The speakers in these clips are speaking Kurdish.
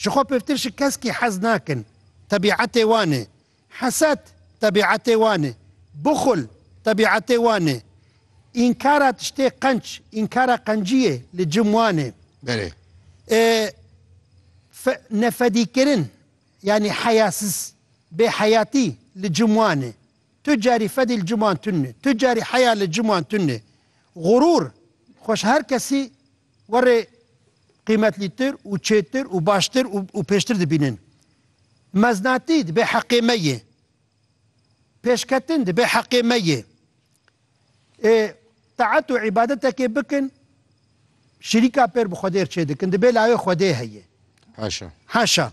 Ji xwe pêvtir ji keskî hez nakin. Tebîetê wan e. Heset, tebîetê wan e. Buxul, tebîetê wan e. Înkara tiştê qenç, înkara qenciyê li cim wan e. Belê. E, fe, nefedîkirin, yanî heyasiz, bêheyatî li cim wan e. Tu carî fedî li cim wan tune. Tu carî heya li cim wan tune. Xurûr, xweş her kesî Warê qîmetlîtir û çêtir û baştir û pêştir dibînin. Meznatî dibe heqê me yê. Pêşketin dibe heqê me yê. Ê taet û îbadetekê bikin, şirîka pêr bi Xwedê re çêdikin, dibê lawê Xwedê heye. Haşa. Haşa.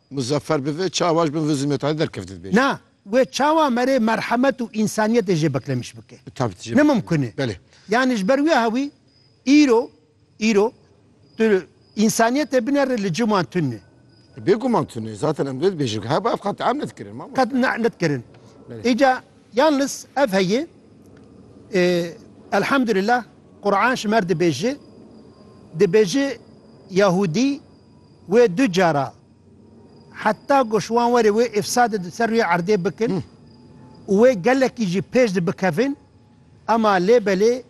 Muzeffer bi vê çawa ji bin vê zilmetayê derkevt dibêje. Na, wê çawa me rê merhemet û însaniyetê jê beklemiş bike. Bi taybetî jê Ne beklemiş mimkun e. Belê. Yanî ji ber wê hewî îro, îro, tu însaniyetê binerê li cim wan tune. Bêguman tune. Zaten em dê dibêjin ku heba ev qet am nedikirin Qet mamoste. ne nedikirin. Belê. Îca yalnis ev heye, e, elhamdulillah, Qur'an ji me re dibêje, dibêje Yahûdî Wê du cara heta ku ji wan were wê îfsadê di ser rûyê erdê bikin û wê gelekî jî pêş di bikevin. Ema lê belê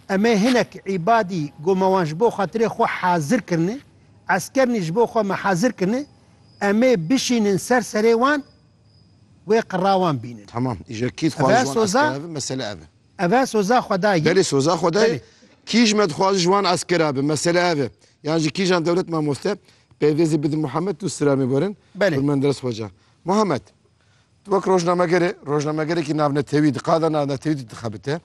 em ê hinek îbadî ku me wan ji bo xatirê xwe hazir kirine, eskernî ji bo xwe me hazir kirine, em ê bişînin ser serê wan wê qira wan bînin. Tamam, îje kî dixwazin ji wan esker eve, mesele ev e. Ev e soza xwedayî. Belê soza xwedayî. Kîj me dixwaze ji wan eskera be. Mesele ev e. Yan ji kîjan dewlet mamoste pêvêzê bidin Muhammed tu silamê werin Belê. Menderes Xweca. Muhammed, tu wek rojnameger î, rojnamegerekî navnetewî di qada navnetewî de dixebite.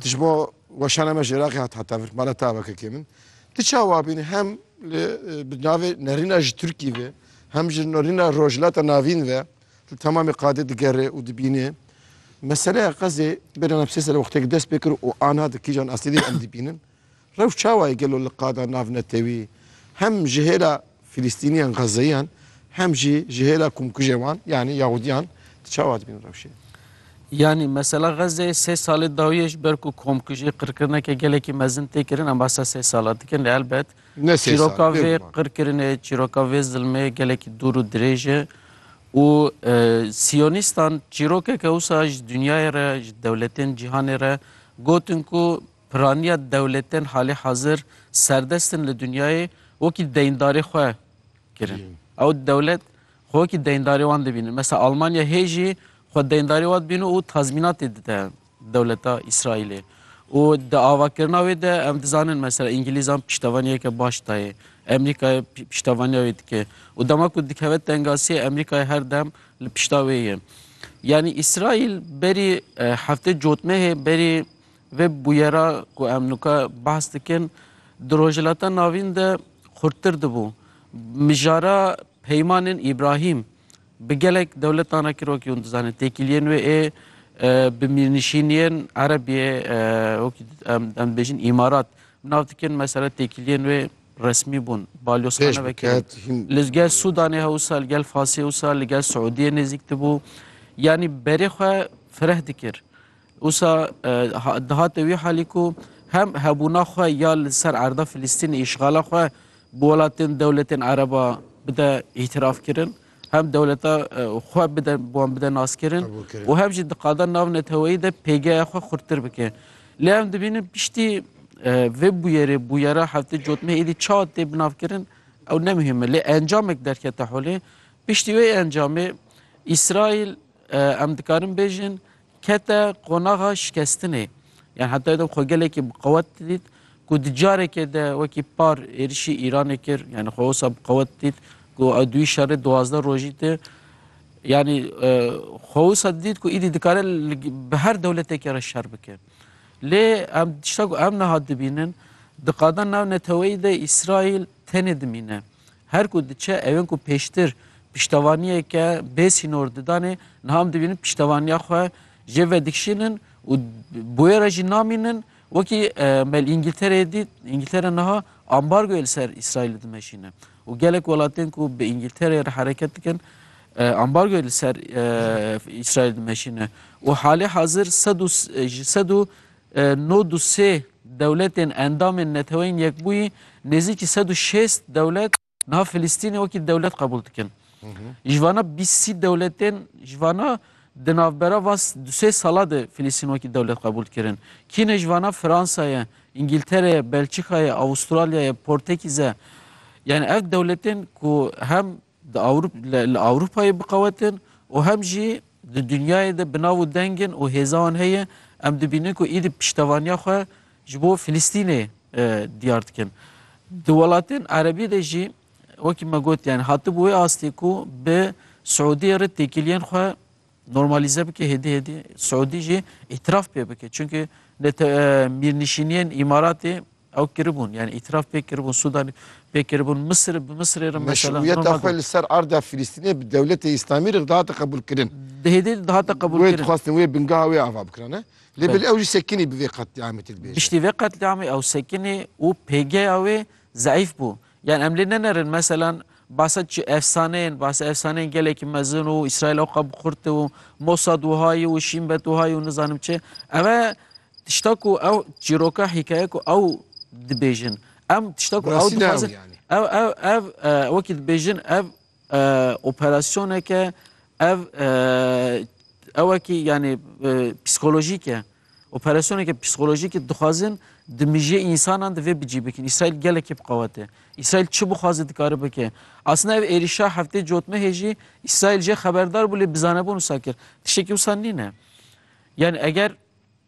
Tu ji bo weşana me ji Iraqê hat heta vir, mala ta wekekê min. Tu çawa bînî hem li bi navê nerîna ji Tirkî ve, hem ji nerîna Rojhilata Navîn ve, Li temamê qadê digere û dibîne. Meseleya qezê bêra navçeyê sere wexteke dest pê kir û anha di kîjan astê de em dibînin. Rewş çawa ye gelo li qada navnetewî hem ji hêla Filistîniyan Xezeyiyan hem jî ji hêla komkujên wan yanî Yahudiyan di çawa dibînin rewşê? Yanî mesela Xezê sê salê dawiyê ji ber ku komkujî qirkirineke gelekî mezin tê kirin em basa sê sala dikin lê elbet Ne sê sal, Çîroka vê vê ziman. qirkirinê, çîroka vê zilmê gelekî dûr û dirêj e û e, Siyonîstan çîrokeke wisa ji dinyayê re, ji dewletên cîhanê re gotin ku piraniya dewletên halê hazir serdest in li dinyayê wekî deyndarê xwe kirin. Ew dewlet xwe wekî deyndarê wan dibînin. Mesela Almanya hê jî xwe deyndarê wan dibînin û tazmînatê dide. dewleta Îsraîlê û di avakirina wê de em dizanin mesela Îngilîzan piştevaniyeke baş dayê Emerîkayê piştevaniya wê dike û dema ku dikeve tengasiyê Emerîkayê her dem li pişta wê ye. Yanî Îsraîl berî heftê cotmehê berî vê bûyera ku em nuka behs dikin di Rojhilata Navîn de xurttir dibû. Mijara peymanên Îbrahîm Bi gelek dewletan re kirokî hûn dizanîn. Têkiliyên wê ê bi mîrnişîniyên Erebiyê wekî em em dibêjin îmarat bi nav dikin. Mesela têkiliyên wê resmî bûn. Balyozxane vekirin. Li gel Sudanê hewsa li gel Fasê wisa li gel Siûdiyê nêzîk dibû. Yanî berê xwe fireh dikir. Usa dihate wî halî ku hem hebûna xwe ya li ser erda Filîstînê îşxala xwe bi welatên dewletên Ereba bide îtiraf kirin, hem dewleta xwe bide wan bide naskirin û hem jî diqada nav neteweyî de pêgeya xwe xurttir bike. Lê em dibînin piştî vê bûyerê bûyera heftê cotmê êdî çawa tê binavkirin ew ne muhîm e. Lê encamek derkete holê. Piştî wê encamê Îsraîl em dikarin bêjin Kete qonaxa şikestinê. Yan hetayê de xwe gelekî bi qewet didît ku di carekê de wekî par êrişî Îranê kir, yanî xwe wisa bi qewet didît ku ew duyî şerê duwazdeh rojî tê. Yanî xwe wisa didît ku îdî dikare bi her dewletekê re şer bike. Lê em tişta ku em niha dibînin, di qada navneteweyî de Îsraîl tenê dimîne. Her ku diçe ew ên ku pêştir piştevaniyeke bê sînor didanê niha em dibînin piştevaniya xwe jê vedikişînin û bi wê re jî namînin wekî me li Îngîltereyê dît Îngîltere niha ambargoyê li ser Îsraîlê dimeşîne û gelek welatên ku bi Îngîltereyê re hereket dikin ambargoyê li ser Îsraîlê dimeşîne û halê hazir sed û ji sed û Nod û sê dewletên endamên Neteweyên Yekbûyî nêzîkî sed û şêst dewlet niha Filistînê wekî dewlet qebûl dikin. Ji vana bîst sî dewletên ji vana di navbera van du sê sala de Filistîn wekî dewlet qebûl kirin. Kî ne ji vana Fransa ye, Îngîltere ye, Belçîka ye, Avustralya ye, Portekîz e. Yanî ev dewletên ku hem Di Ewrop li Ewropayê biqewet in û hem jî di dinyayê de bi nav û deng in û hêza wan heye. Em dibînin ku êdî piştevaniya xwe ji bo Filistînê diyar dikin. Di welatên Erebî de jî wekî me got yanî hatibû wê astê ku bi Siûdiyê re têkiliyên xwe normalîze bike hêdî hêdî Siûdî jî îtiraf pê bike. Çimkî li te mîrnişîniyên Îmaratê Ew kiribûn yani îtiraf pê kiribûn Sûdanê pê kiribûn Misirê bi Misirê re mesela Meşruiyeta normal xwe dibû. li ser arda Filistînê bi dewletê Îslamî re dihate qebûlkirin. Di hêdê de dihate Wê qebûlkirin. dixwestin wê bingeha wê ava bikirane. Lê Belê. belê ew jî sekinî bi vê qetlîamê tê dibêje. Piştî vê qetlîamê ew sekinî û pêgeya wê zeîf bû. Yan em lê nenerin meselan basa çi efsaneyên basa efsaneyên gelekî mezin û Îsraîl oqa bi xurt û Mosad wiha ye û Şîn bet wiha ye û nizanim çi. Ev e tişta ku ew çîroka hîkaye ku ew dibêjin. Em tişta ku ew Rastî ne ew dixwazin yani. ew ew ev e, wekî dibêjin ev Operasyoneke ev ewekî yanî psîkolojîk e. Operasyoneke psîkolojîk e dixwazin di mijî însanan di vê bicî bikin. Îsraîl gelekî bi qewet e. Îsraîl çi bixwaze dikare bike. Aslında ev êrîşa heftê cotmehê jî Îsraîl jê xeberdar bû lê bizanebûn wisa kir. Tiştekî wisa nîne. Yanî eger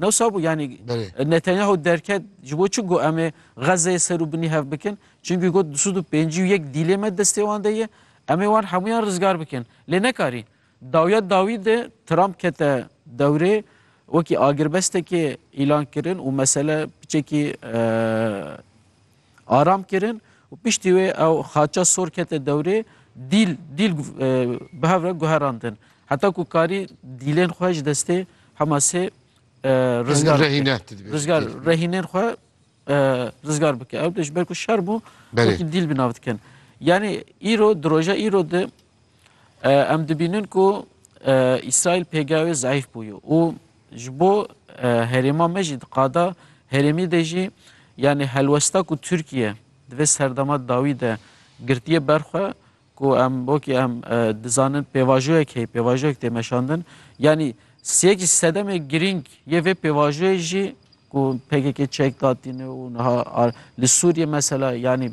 Newsa bû yanî Belê. Netanyahu derket ji bo çi got em ê Xezzeyê ser û binî hev bikin. Çimkî got du sed û pêncî û yek dîlê me destê wan de ye. Em ê wan hemûyan rizgar bikin. Lê nekarî. Dawiya dawî de Trump kete dewrê wekî agirbestekê îlan kirin û mesele piçekî aram kirin û piştî wê ew xaça sor kete dewrê dîl dîl bi hev re guherandin. Heta ku karî dîlên xwe ji destê Hamasê rizgar rizgar rehînên xwe rizgar bike. Ew de ji ber ku şer bû dîl bi nav dikin. Yani îro di roja îro de Em dibînin ku Îsraîl pêgeha wê zeîf bûye û ji bo herêma me jî diqada herêmî de jî yanî helwesta ku Tirkiye di vê serdema dawî de girtiye berxwe ku em wekî em dizanin pêvajoyek heye pêvajoyek tê meşandin yanî sêk jî sedemê girîng yê vê pêvajoyê jî ku PKK çek datîne û niha li Sûriye mesela yanî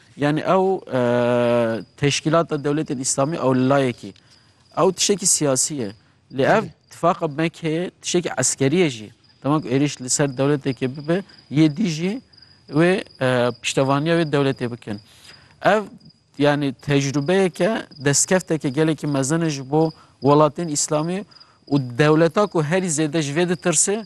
Yanî ew teşkîlata dewletên îslamî ew li layekî ew tiştekî siyasî ye. Lê ev tifaqa Mekeyê tiştekî eskerî ye jî. Dema ku êrîş li ser dewletekê bibe yê dî jî wê piştevaniya wê dewletê bikin. Ev yanî tecrûbeyeke destkefteke gelekî mezin e ji bo welatên îslamî û dewleta ku herî zêde ji vê ditirsê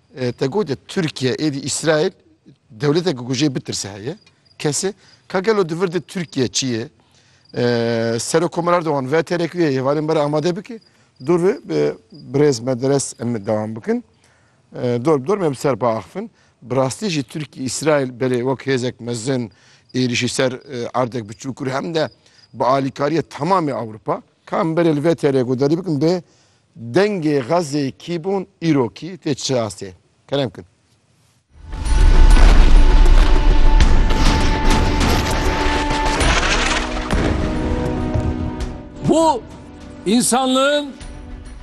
Te got e Tirkiye êdî Îsraîl dewletekî ku jê bitirse heye. Kesê ka gelo di vir de Tirkiye çi ye? Serokomar Erdogan veterek wê hêvanên bere amade bike. Dor ve bi birêz me deres em dewam bikin. Dor bi dor me bi ser biaxivin. Bi rastî jî Tirkiye Îsraîl belê wek hêzek mezin êrîşî ser erdek bi çûkir hem de bi alîkariya temamê Ewropa. Ka em berê li vê TR'ye ku derî bikin bê Dengê Xezê kî bûn îro kî tê çi astê? Kerem kin. Bu insanlığın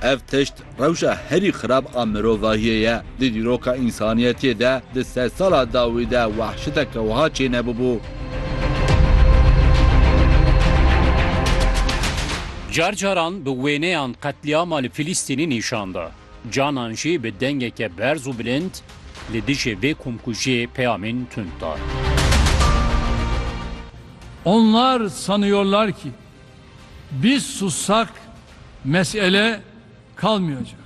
Ev tişt rewşa herî xirab a mirovahiyê ye. Di dîroka însaniyetiyê de di sedsala dawî de wahşiteke wiha çênebûbû. Car caran bi wêneyan qetlîama li Filîstînê nîşan da, canan jî bi dengeke berz û bilind li dijî vê komkujiyê peyamên tund da. Onlar sanıyorlar ki biz sussak mesele kalmayacak.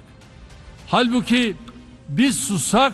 Halbuki biz sussak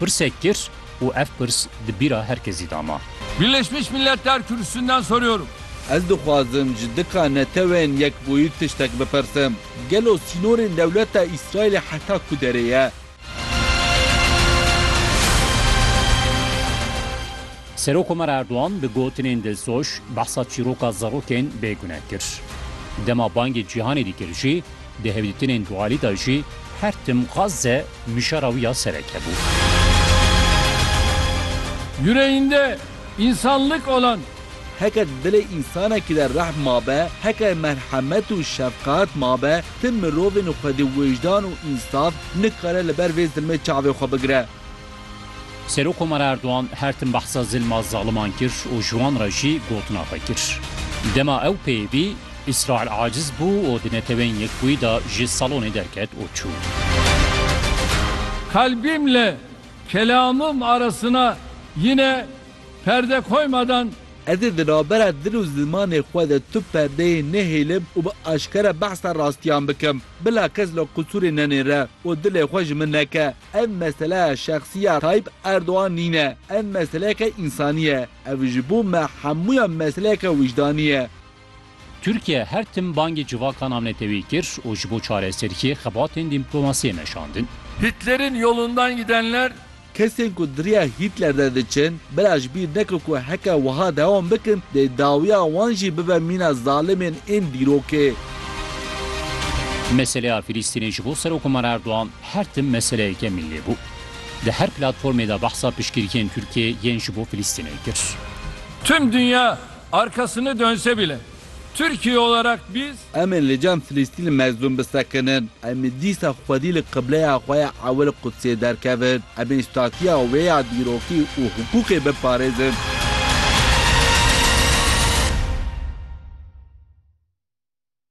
Pirsek kir û ev pirs di bîra her kesî de ma. Birleşmiş Milletler Kürsüsünden soruyorum. Ez dixwazim ji dika netewên yekbûyî tiştek bipirsim. Gelo sînorên dewleta Îsraîlê heta ku derê ye? Serokkomar Erdogan di gotinên dilsoz behsa çîroka zarokên bêgune kir. Dema bangê cîhanê dîkir jî Di hevdîtinên dualî de jî her tim Gazze mijara wî ya sereke bû. Yüreğinde insanlık olan. Heke di dilê însanekî de rehm mabe, heke merhemet û şefqet mabe, tim mirovên xwedî wijdan û însaf nikare li ber vê zilmê çavê xwe bigire. Serokkomar Erdogan her tim behsa zilma zaliman kir û ji wan re jî gotina xwe kir. Dema ew pê bî, Îsraîl aciz bû û di Neteweyên Yekbûyî de ji salonê derket û çû. Kalbimle kelamım arasına yine perde koymadan. Ez ê di navbera dil û zimanê xwe de tu perdeyê nehêlim û bi aşkere behsa rastiyan bikim. Bila kes li qusûrê nenêre û dilê xwe ji min neke. Ev meseleya şexsî ya Tayyîp Erdogan nîne. Ev meseleyeke însanî ye. Ev ji bo me hemûyan meseleyeke wijdanî ye. Tirkiye her tim bangê civaka navneteweyî kir û ji bo çareseriyê xebatên dîmplomasiyê meşandin. Hitler'in yolundan gidenler. Kesên ku di riya Hitler de diçin, bira ji bîr neke ku heke wiha dewam bikin dê dawiya wan jî bibe mîna zalimên ên dîrokê. Meseleya Filistînê ji bo Serokomar Erdogan. Her tim meseleyeke milli bû. Di her platformê de behsa piştgirîkên Tirkiyê yên ji bo Filistînê kir. Tüm dünya arkasını dönse bile Türkiye olarak biz. Em ê li cem Filîstînê mezlûm bisekinin. Em ê dîsa xwedî li qibleya xwe ya ewil Qudsê derkevin. Em ê statiya wê ya dîrokî û hiqûqê biparêzin.